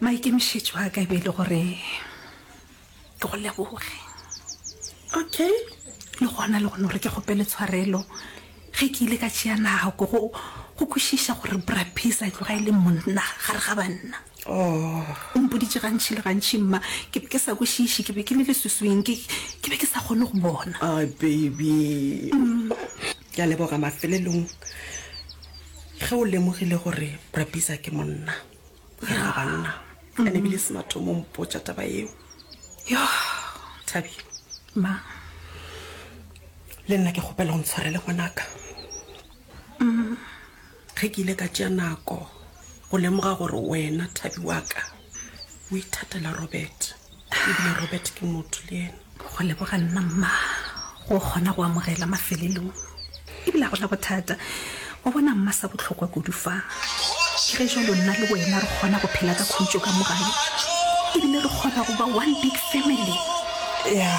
Maikemišetšo a ka e be e le gore ke go leboge, okay, le gona le gone gore ke kgopele tshwarelo ge ke ile ka tšea nako go go kwešiša gore Bra Peace a tloga e le monna gare ga banna. Oh. O mpoditše gantši le gantši, mma, ke be ke sa kwešiše, ke be ke le leswiswing, ke, ke be ke sa kgone go bona. Ah, baby. Ke a leboga mafelelong ge o lemogile gore Bra Peace a ke monna. ya banna ka ne bile se mathomo mpotsa taba eo yo thabi ma le nna ke kgopela go ntshwarele ngwanaka mm. ge ke ile ka tšea nako go lemoga gore wena thabi wa ka o ithatela robert ebile robert ke motho le ena go leboga nna mma go kgona go amogela mafelelong ebile a gona bothata wa bona mma sa botlhokwa kudu fa ke ge jalo nna le wena re kgona go phela ka khutso ka mogae ebile re kgona go ba one big family ya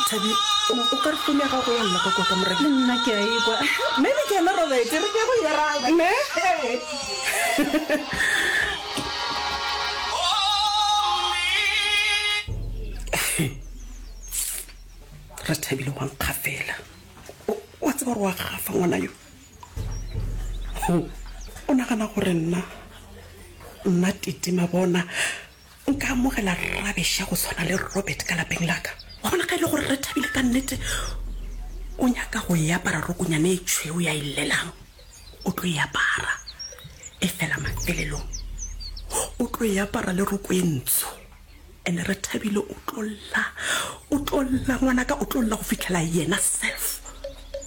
thabi o ka re fone ya gago ya lla ka kota mora le nna ke a ekwa maybe ke ena robert re ke go ira ne ra thabile wa nkga fela wa tseba gore wa gafa ngwana yo o nagana gore nna nna titima bona nka amogela rabesha go tshwana le robert ka lapeng laka wa bona ga e le gore re thabile ka nnete o nyaka go e apara rokonyane e tshweu ya e llelang o tlo e apara, efela mafelelong o tlo e apara le roko e ntsho. And Rethabile o tlo lla, o tlo lla ngwanaka, o tlo lla go fihlela yena self.